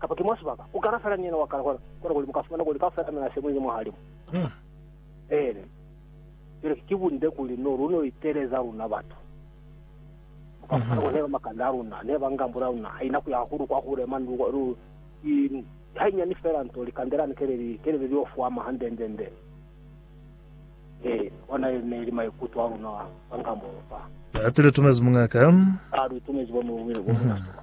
Kapa ki mwa sibaka, ku kala fela ni yena wa kale, kono, kono kuli mu ka fumana kuli kaufela a mina se muli ni mwahalimu. Eeni. Cwale, ki bunde kuli no, lu no iteleza luna batu. Lu ka fumana kuli neba makanda a luna, neba ngambula ya luna, haina kuya hahulu kwa hule mwa ndu, lu, i, hainyani fela nto, likande lani ke le li, ke le li lio fwama hande-nde-nde. Eeni, ona ye ne li maikuto a luna kwa ngambulo fa. Hape lu itumezi muñ'a ka. A, lu itumezi bo mu, bo mu tasuba.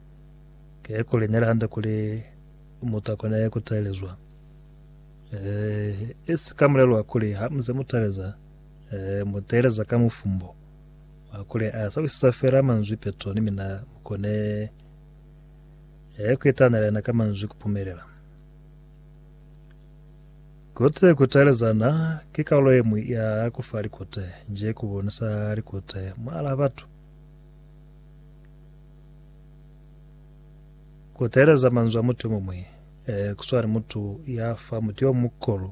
Ke kuli neli hande kuli mutu akone ku taelezwa. Eh, isi ka mulelo wa kuli ha muze mu taeleza, eh, mu taeleza ka mufumbo wa kuli a sa wisisa fela manzwi peto ni mina mu kone eh, ku itanela yena ka manzwi ku pumelela. Kote ku taelezana ki kaulo ye mwi ya ku fa likote, nje ku bonisa likote mwala batu. Ku teeleza manzwi a mutu yomuñwi ku swana ni mutu ya fa mutu yo muhulu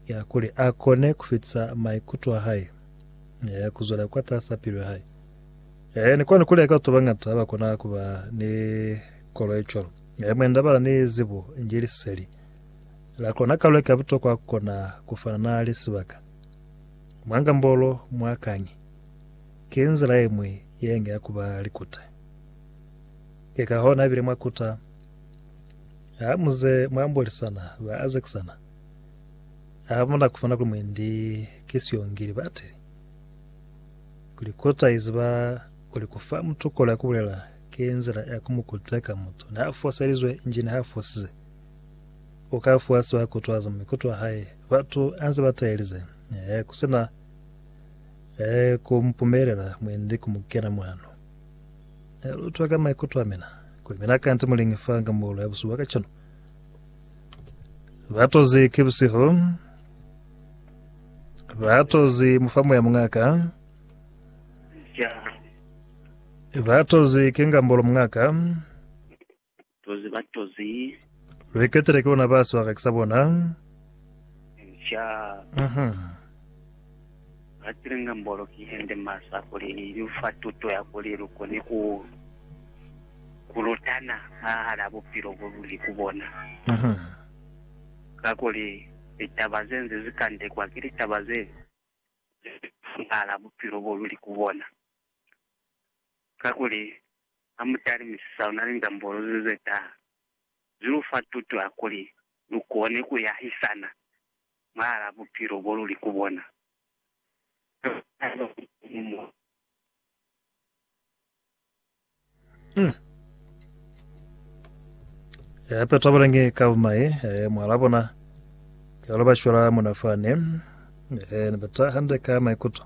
ya kuli a kone ku fitisa maikuto a hae ku zwela kwatas'a pilu ya hae. Ni kwani ku leka batu ba bañata ha ba kona ku ba ni kolo ye cwalo. Mwend'a ba na ni zibo nji liseli la kona ka leka butokwa ku kona ku fana na lisibaka mwa ngambolo mwa kañi. Ki nzila ye ñwi ye nge ya ku ba likute. Ki ka hona bile mwa kuta ha mu ze mwa ambolisana ba azekisana. Ha mu na ku fana kuli mwendi ki siongi libateli. Kuli kuta i ziba kuli ku fa mutu kolo ya ku bulela ki nzila ya ku mu kuteka mutu ni ha foselizwe nji ni ha fosize. U ka fuwa siba kutwazo mwa mikutwa hae batu a nze ba tahelize, ku si na Ee, ku mupumelela mwendi ku mu kena mwano. Ne lu utwa ka maikuto a mina kuli mina kanti mu lingi fa nga muulu ya busuba ka cwalo. Ba tozi ki busihu, ba tozi mufamu ya mungaka, ba tozi ki ngambolo mungaka, Batozi, batozi. Luiketele ki bona baso haka kisa bona. Nca. Mhm. Batile nga mbolo ki hende masa kuli ilufa tuto ya kuli lukone ku kulutana mwahala bupilo bululi ku bona. Mhm. Kakuli litaba zenze zikandekwa ki litaba ze mwahala bupilo boluli ku bona. Kakuli, ha mu talimisisa luna lindambolo ze ze taha, ze lu fa tuto ya kuli lu kone ku yahisana mwahal'a bupilo bo lu li ku bona. Kuli ha ku na muñwi mo. Uhm. He hape tabalangi ka bumai, he mwahal'a bona, kihalo ba shwela mona fani, he ne ba taha hande ka maikuto.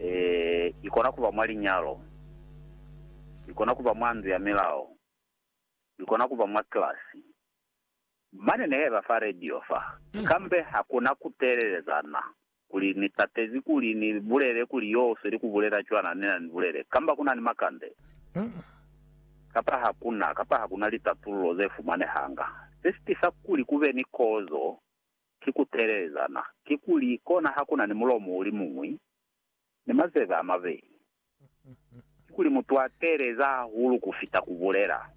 E, i kona ku ba mwa linyalo, i kona ku ba mwa ndu ya milao, i kona ku ba mwa kilasi. Mane ne heba fa radio fa, kambe ha ku na ku teelelezana, kuli, Ni tatezi kuli ni bulele kuli yo u sweli ku bulela cwana ne na ni bulele, kamba ku na ni makande, kapa ha ku na, kapa ha ku na litatululo ze fumanehanga, se si tisa kuli ku be ni kozo. ki ku teelelezana, kikuli, kona ha ku na ni mulomo u li muñwi, ni mazebe a mabeli. Kikuli mutu a teeleza hahulu ku fita ku bulela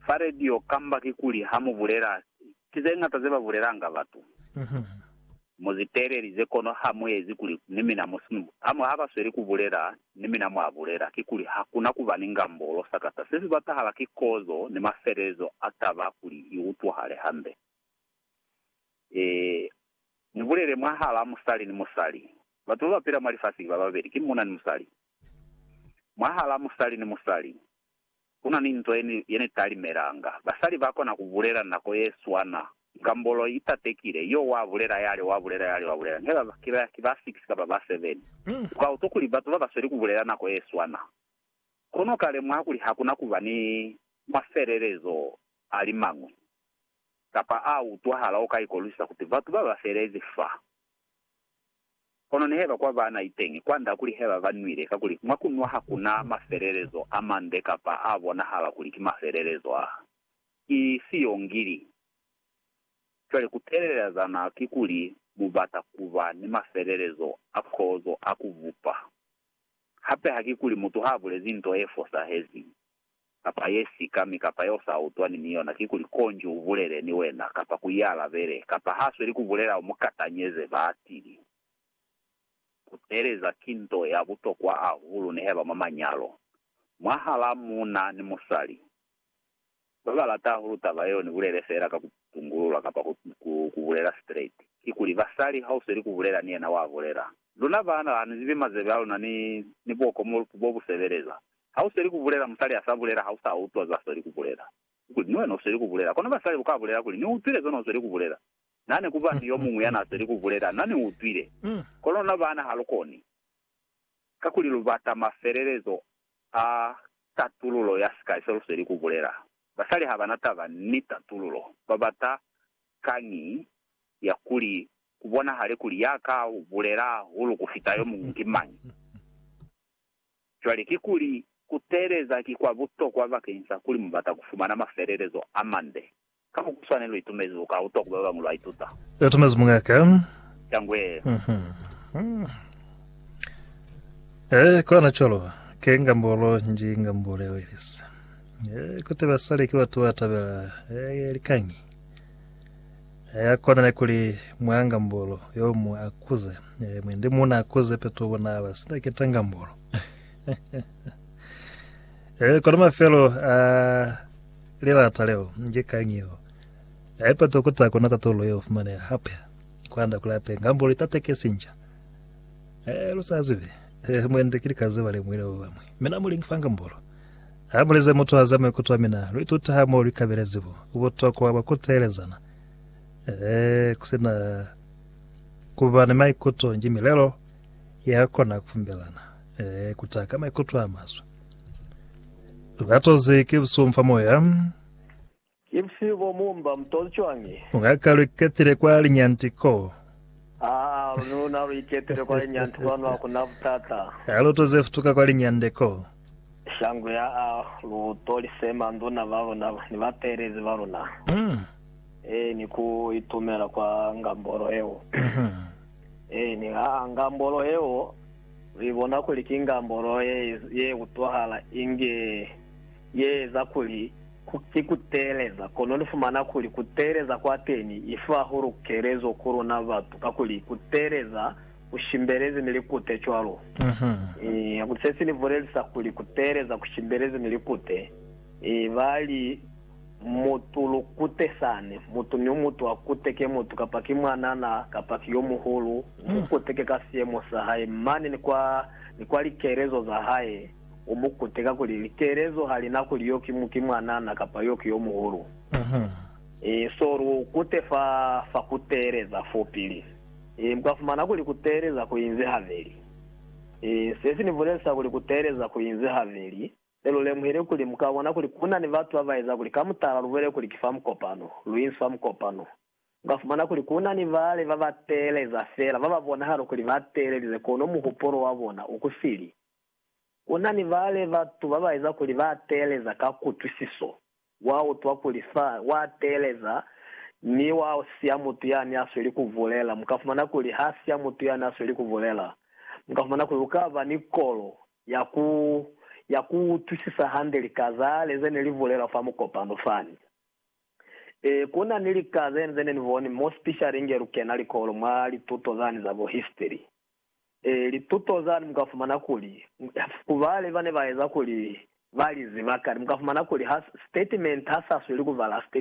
fa radio kamba kikuli ha mu bulela, ki ze ñata ze ba bulelanga batu. Mu zi teelelize kono ha mu ezi kuli ni mina mu si mu. Hamu ha ba sweli ku bulela, ni mina mwa bulela, kikuli ha ku na ku ba ni ngambolo. Sakata se si batahala ki kozo ni mafelelezo a taba kuli i utwahale hande. Ee, mu bulele mwahal'a musali ni musali. Batu ba ba pila mwa lifasi ki ba babeli, ki muuna ni musali. Mwahal'a musali ni musali. Ku na ni nto ye ni talimelanga. Basali ba kona ku bulela nako ye swana. Ngambolo i tatekile, Yo wa bulela yale, wa bulela yale, wa bulela. Nge ba, ki ba, ki ba six kapa ba seven. U ka utwa kuli batu ba ba sweli ku bulela nako ye swana. Kono u ka lemuha kuli ha ku na ku ba ni mafelelezo a li mañwi, kapa a utwahala o ka ikolwisisa kuti batu ba ba felezi fa. Kono neheba kwa bana iteñi kwanda kuli heba ba nwile, kakuli mwa kunwa hakuna mafelelezo a mande kapa a bonahala kuli ki mafelelezo a ki siyongili. Cwale kutelelezana kikuli mubata kuba ni mafelelezo a kozo a kubupa. Hape hakikuli mutu habulezi nto e fosahezi, kapa ye sika mi kapa yeo sa utwani ni yona, kikuli konji u bulele ni wena, kapa ku ialabele, kapa ha sweli ku bulela u mu katanyeze, ba tili, Ku teeleza ki nto ya butokwa ahulu ni heba mwa manyalo, mwahala muuna ni musali. Ba ba lata ahulu taba yeo ni bulele fela ka ku tungulula kapa ku, ku, ku bulela straight. Kikuli, basali ha u sweli ku bulela ni yena wa bulela, Luna baana ha ni zibi mazebe a luna ni, ni boko mo bo bu sebeleza, Ha u sweli ku bulela, musali a sa bulela, ha u sa utwa zwa sweli ku bulela. Ku kuli, Ni wena u sweli ku bulela. Kono basali bu ka bulela kuli, Ni utwile zona u sweli ku bulela. Na ne ku ba ni yo muñwi ya na sweli ku bulela, Na ni utwile. Kono luna baana ha lu koni. Kakuli lu bata mafelelezo a tatululo ya sikali se lu sweli ku bulela. Basali ha ba na taba ni tatululo. Ba bata kañi ya kuli ku bonahale kuli ya ka bulela hahulu ku fita yo muñwi ki mañi. Cwale kikuli ku teeleza ki kwa butokwa bakeñisa kuli mu bata ku fumana mafelelezo a mande? Ka mo ku swane lu itumezi lu ka utwa ku ba bañwi lwa ituta. Lu itumezi muñaha. Cangwe. E kona cwalo, ke ngambolo nji, ngambolo ya Welesi. E kuti basali ki batu ba tabela likañi? Ya kona ne kuli muangambolo yo mu akuze, e, mwendi muna akuze peto bona ba sina keta ngambolo. e, kona mafelo a lilata leo, nje kangio. E, peto kuta kona tatolo yo fumane hape. Kwanda kula pe ngambolo itateke sinja. E, lusazibe. E, mwendi kilikaze ba lemwile ba bamwe. Mina mulingi fanga mbolo. Ha bulezi mutu haza maikuto a mina, lu ituta ha mo lu ikabelezi bo butokwa bwa ku teelezana. Ee, ku si na ku ba ni maikuto ki milelo ya kona ku fumbelana, ee, ku taha ka maikuto a maswe. Batozi ki busumfa moya. Ki busihu bo mu mba mu toli cwañi? Nga ka lu iketile kwa linyanti ko. Aa, lu na lu iketile kwa linyanti kwanu, ha ku na butata. Ha lu toze futuka kwa linyande ko. Shangu ya a, lu toli se manduna ba luna ni bateelezi ba luna. Mm. Ee, ni ku itumela kwa ngambolo yeo. Mhm. Ee, ni ha a, ngambolo yeo, lu ibona kuli ki ngambolo ye, ye utwahala inge Ye eza kuli ki ku teeleza, kono lu fumana kuli ku teeleza kwa teñi i fa hahulu kelezo ku luna batu, kakuli ku teeleza ku shimbelezi mi likute cwalo. Kakuli se si ni bulelisa kuli ku teeleza ku shimbelezi mi likute, ba li, Mutu lukute sani, mutu ni mutu a kuteke mutu, kapa ki mwanana kapa ki yo muhulu, mu kuteke ka siyemo sa hae mane ni kwa, ni kwa likelezo za hae. u mu kuteka kuli, Litelezo ha li na kuli yo ki mu, ki mwanana kapa yo ki yo muhulu. I so lu kute fa, fa ku teeleza fo pili. I mu ka fumana kuli ku teeleza ku inzi habeli. I se si ni bulelisa kuli ku teeleza ku inzi habeli, ne lu lemuhile kuli mu ka bona kuli ku na ni batu ba ba eza kuli ka mutala lu bwele kuli ki fa mukopano, lu inzi fa mukopano. Mu ka fumana kuli ku na ni bale ba ba teeleza fela, ba ba bonahala kuli ba teelelize kono muhupulo wa bona u ku sili. Ku na ni bale batu ba ba eza kuli ba teeleza ka kutwisiso, wa utwa kuli fa, wa teeleza, mi wa siya mutu yani a sweli ku bulela. Mu ka fumana kuli ha siya mutu yani a sweli ku bulela, mu ka fumana kuli u ka ba ni kolo ya ku, ya ku utwisisa hande lika zale ze ne li bulelwa fa mukopano fani. Ee, ku na ni lika ze, ze ne ni boni mo sipishali inge lu kena likolo, mwa lituto zani za bo histiri. Lituto zani mu ka fumana kuli ku bale ba ne ba eza kuli ba li ziba kale. Mu ka fumana kuli ha sitatimenti ha sa sweli ku bala sitatimenti.